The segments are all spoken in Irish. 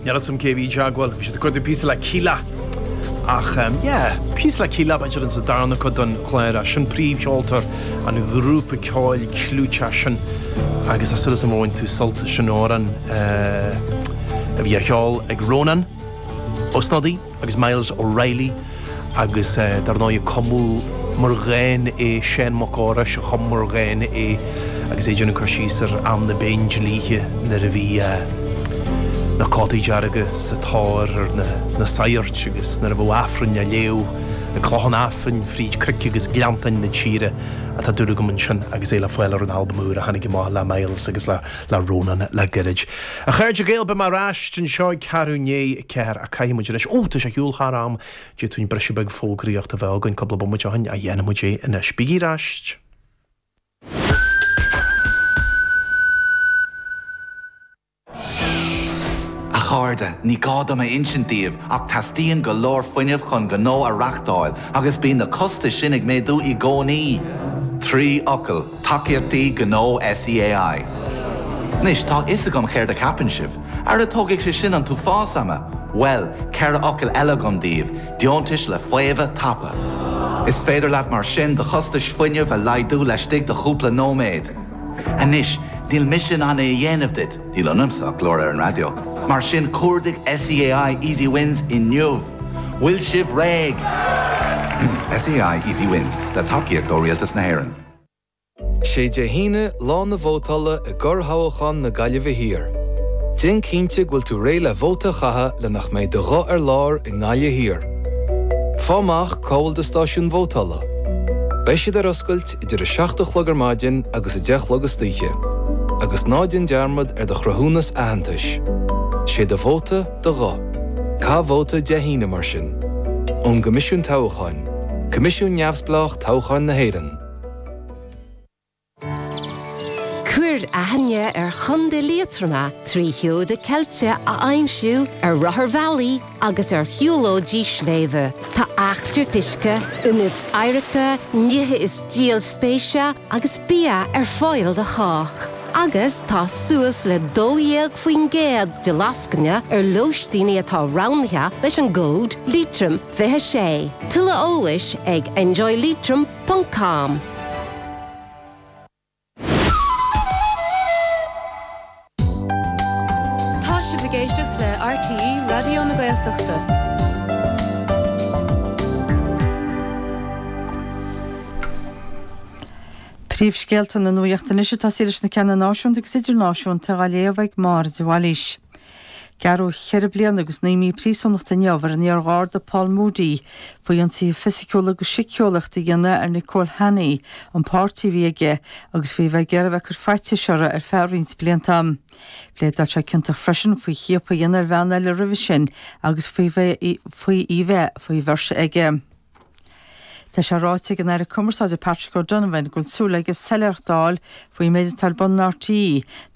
Níl 'fhios a'm cé a bhí ag gabháil, bhí siad ag cuartú píosa le Kíla! Ach yeah, píosa le Kíla, b'fhéidir insa darna cuid den chlár. Sin príomhcheoltóir an ghrúpa ceoil clúiteach sin agus tá súil asam go bhain tú sult as an amhrán a bhí á cheol ag Rónán Ó Snodaigh. agus Myles O'Reilly agus dar ndóigh cumadh mar dhán é, Seán Mac Fheorais a chum mar dhán é agus é ag déanamh cur síos ar am na bPéindlíthe nuair a bhí na cótaí dearga sa tóir ar na sagairt agus nuair a bheadh Aifreann á léamh ag clocha an Aifrinn fríd cnoic agus gleanntáin na tíre atá dúil agam ansin agus é le fáil ar an albam úr a tháinig amach le Myles agus le Rónán le gairid. A chairde Gael, beidh mé ar ais anseo ag ceathrú ndiaidh. 4. Caithfidh muid anois. Ó, tá sé ag siúl thar am. D'fhéadfainn briseadh beag fógraíochta a bheith againn cúpla bomaite ó shin ach dhéanfaidh muid é anois. Bígí ar ais! A chairde, ní gá dom a insint daoibh ach teastaíonn go leor fuinnimh chun gnó a reachtáil agus bíonn na costais sin ag méadú i gcónaí. Trí fhocal. Tacaíochtaí Gnó SEAI. Anois, tá a fhios agam céard a cheapann sibh. Ara tógfaidh sé sin an t-uafás ama! Bhuel, ceithre fhocal eile agam daoibh, deontais le faomhadh tapa. Is féidir leat mar sin do chostais fuinnimh a laghdú laistigh de chúpla nóiméad. Anois, níl mise in ann é a dhéanamh duit, níl ionamsa ach glór ar an raidió, mar sin cuardaigh SEAI Easy Wins inniu! Bhfuil sibh réidh? SEAI Easy Wins, le tacaíocht ó Rialtas na hÉireann. 'Sé Dé hAoine, Lá na Vótála i gCorrthoghachán na Gaillimhe Thiar. Déan cinnte go bhfuil tú réidh le vóta a chaitheamh le nach mbeidh do ghuth ar lár i nGaillimh Thiar. Faigh amach cá bhfuil do stáisiún vótála. Beidh siad ar oscailt idir 7 a chlog ar maidin agus 10 a chlog istoíche. Agus ná déan dearmad ar do chruthúnas aitheantais. 'Sé do vóta, do ghuth Caith vóta Dé hAoine mar sin. ón gCoimisiún Toghcháin, coimisiún neamhspleách toghcháin na hÉireann. Cuir aithne ar Chontae Liatroma trí sheoda ceilte a aimsiú ar rotharbhealaí agus ar shiúlóidí sléibhe. Tá gníomhaíochtaí uisce, ionaid oidhreachta, nithe is díol spéise agus bia ar fáil do chách. agus tá suas le 12% de lascaine ar lóistíní atá roghnaithe leis an gcód Liatroim26. Tuilleadh eolais ag enjoyleitrim ponc com. Tá sibh ag éisteacht le RTÉ Raidió na Gaeltachta. Príomhscéalta na nuaíochta anois ag tosaí leis na ceanna náisiúnta agus idirnáisiúnta á léamh ag Máire de Bhailís. Gearradh cheithre bliana agus naoi mí príosúnachta inniu ar an iar-Gharda Paul Moody faoi ionsaithe fisiciúla agus síceolaíochta a dhéanamh ar Nicola Hanney, an páirtí a bhí aige, agus faoi a bheith ag iarraidh a bheith ag cur faitís uirthi ar feadh roinnt blianta. Phléadáil sé ciontach freisin faoi chiapadh a dhéanamh ar bhean eile roimhe sin agus faoi í bheith faoi bheirse aige. Tá sé ráite ag an Aire Cumarsáide Patrick O'Donovan go bhfuil súil aige soiléireacht a fháil faoin méid atá ar bun in RTÉ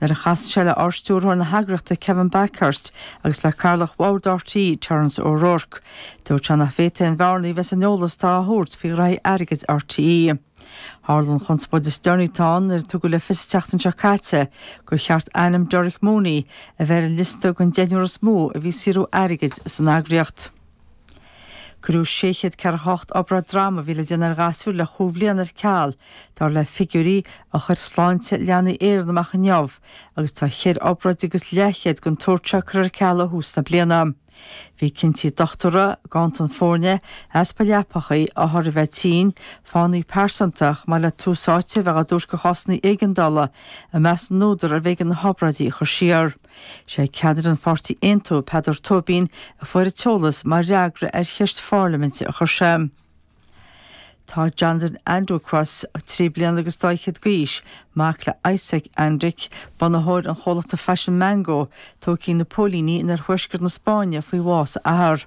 nuair a chasfaidh sé le Ardstiúrthóir na heagraíochta Kevin Bakhurst agus le Cathaoirleach Bhord RTÉ Terence O'Rourke. Dúirt sé nach bhféadfadh aon bhearnaí a bheith san eolas atá á thabhairt faoi ghraithí airgid RTÉ. Tharla an chonspóid is deireanaí atá ann nuair a tugadh le fios an tseachtain seo caite gur cheart ainm Derek Mooney a bheith ar an liosta den deichniúr is mó a bhí ag saothrú airgid san eagraíocht. Cuireadh 648 obráid droma a bhí le déanamh ar ghasúir le chúig bhliana ar ceal, dar le figiúirí a chuir Sláinte Leanaí Éireann amach inniu, agus tá cheithre obráid agus leathchéad den tsórt seo curtha ar ceal ó thús na bliana. Bhí cinntí dochtúra, ganntan foirne, easpa leapacha, othair a bheith tinn, fáthanna pearsanta, chomh maith le tús áite a bheith á dtabhairt do chásanna éigeandála, i measc na n-údar arbh éigean na hobráidí a chur siar. Is é ceannaire an pháirtí Aontú, Peadar Tóibín, a fuair an t-eolas mar fhreagra ar cheist pharlaiminte a chuir sé. Tá Jonathan Andic, trí bliana agus dá fhichead d'aois, mac le Isak Andic, bunaitheoir an chomhlachta faisin Mango, tógtha ag na póilíní in oirthuaisceart na Spáinne faoi bhás a athar.